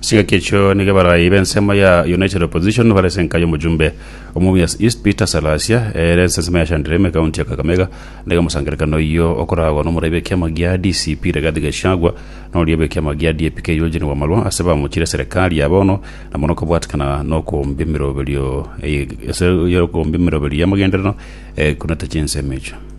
Ase egaki ekio nigo abarai b'ensemo ya United Opposition bare ase enka y'omojumbe o Mumias East Peter Salasia ere ase ensemo ya Shandrime ekaunti ya Kakamega na iga omosangererekano oyio okoragwa n'omoraibi w'ekiama gia DCP Rigathi Gachagua na oria bw'ekiama gia DAP-K Eugene Wamalwa ase bamochire serikali ya bono na mono kobwatikana n'okombia emeroberio ase okombia emeroberio y'amagenderero ekunete chinsemo echio.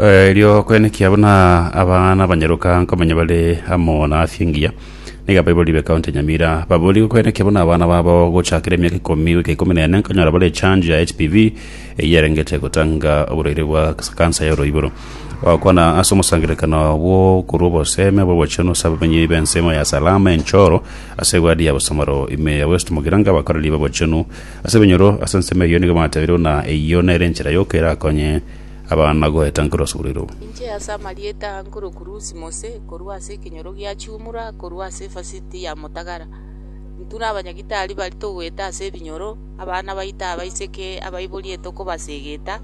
Eh, erio kwene kia buna abana banyaruka nkomanya bare amo na afya engiya niga baibori be county ya nyamira babori kwene kia buna abana babo gochakera emiaka ikomi goika ikomi na ene nkonyora bare chanjo ya hpv eyerengete gotanga oborwaire bwa kansa ya oroiboro wakwana ase omosangererekano bwo korwa oboseme bw'obochenu ase abamenyi b'ensemo ya salama enchoro ase egwadi ya bosamaro ime ya west mogiranga bakoreri b'obochenu Ase ebinyoro ase ensemo eyio nigo batabeirwe ng'a eyio nere enchera yoka erakonye abana goeta nkoro ase oboreiro. Inche ase amarieta a nkoro Kurusi Mose, korwa ase ekenyoro gia chiumura korwa ase efasiti ya motagara, intwe na abanyagitari baria togoeta ase ebinyoro abana baito abaiseke abaiborie tokobasegeta,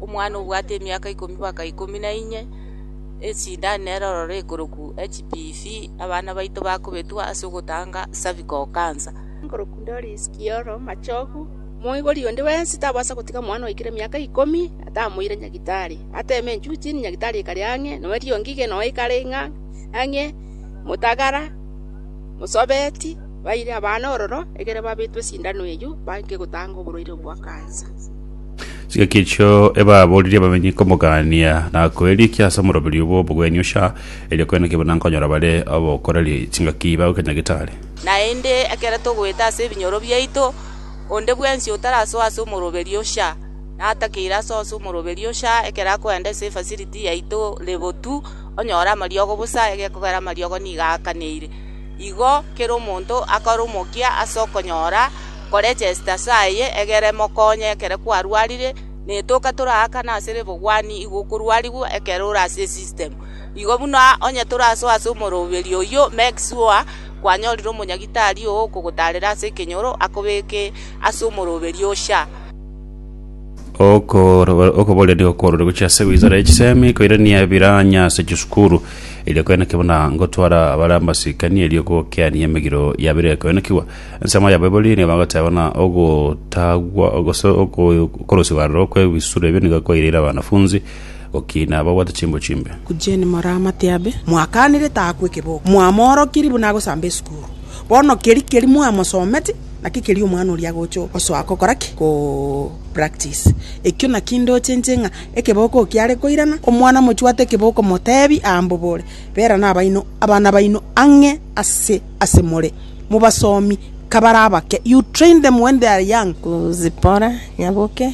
omwana obwate emiaka ikomi baka ikomi na inye, esindani nere ororo ekoroku HPV, abana baito bakobetwa ase ogotanga cervical cancer. Nkorokwa Doris Kioro Machogu, omoigori onde bwensi tabasa gotiga omwana oikire emiaka ikomi atamoire nyagitari. Ateme enchuchi, nyagitari ekare ang'e, nonya erio ngige nonya ekare ng'a ang'e, motagara, mosobeti, baire abana ororo ekero babetwe esindano eyio baike gotanga oborwaire obwo bwa kansa. Chigaki echio ebaaboririe abamenyi komogania na koerikia ase omoroberi obwo obogwenia ocha, erio koene kebuna nkonyora bare obokoreri chingaki bagoke nyagitari. Naende ekero togoeta ase ebinyoro biaito, onde bwensi otarasoa ase omoroberio ocha, natakeire asoe ase omoroberio ocha ekero akoenda ase efasiriti yaito rebotu, onyore amariogo bosa, egekogera amariogo nigo aakaneire. Igo kera omonto akore omokia ase okonyora koregesta ase aye egere emokonye ekero kwarwarire, na etoka toraakana ase rebogwani igo okorwarigwa ekero ore ase esistemu. Igo buna onye torasoe ase omoroberio oyio, make sure kwanyorire omonyagitari ogokogotaarera ase ekenyoro akobeke ase omoroberio osia. Okoboreria okworore gochia ase wizara ya chisemi koirania ebiranya ase chisukuru erio koenekigwa buna gotwara bare amasikani erio gokeania emegiro ya bire koenekigwa. Ensemo ya Baibori nigo bagoteba buna ogotagwa gose okorosiwa aroro kwe bisuro ebio nigo kwaireire abanafunzi Gaki nababwate chimbo chimbe. Kujeni moramate abe. Mwakanire taakwe ekeboko, mwamoorokirie buna agosamba esukuru. Bono keria keria mwamosometi, naki keria omwana oria agocha osoa gokora ki? Ko practice. Ekio naki ndochenche ng'a ekeboko eki kiare koirana. Omwana mochwate ekeboko motebi aa mbobore, Bera nabaino abana baino ang'e ase ase more, mobasomi kabare abake, you train them when they are young. Kuzipora, nyaboke,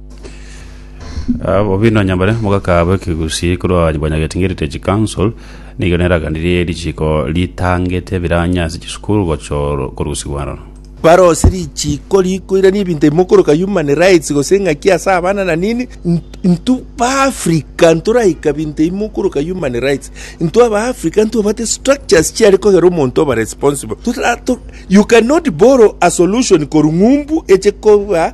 Ah, bobi nonya bare mogakaabo ekegusii korwa abanyabwanyageti ng'Heritage Council nigo neraganirie richiko ritangete biranye ase chisukuru gochoro korusigwa aroro. Bare ose richiko rikoirania ebinto ebimo okoroka human rights gose eng'aki ase abana na nini int- intwe baafrica ntoraika binto ebimo okoroka human rights intwe abaafrica ntobate structures chiare kogera omonto oba responsible Totara- to- you cannot borrow a solution korwa ng'umbu eche koba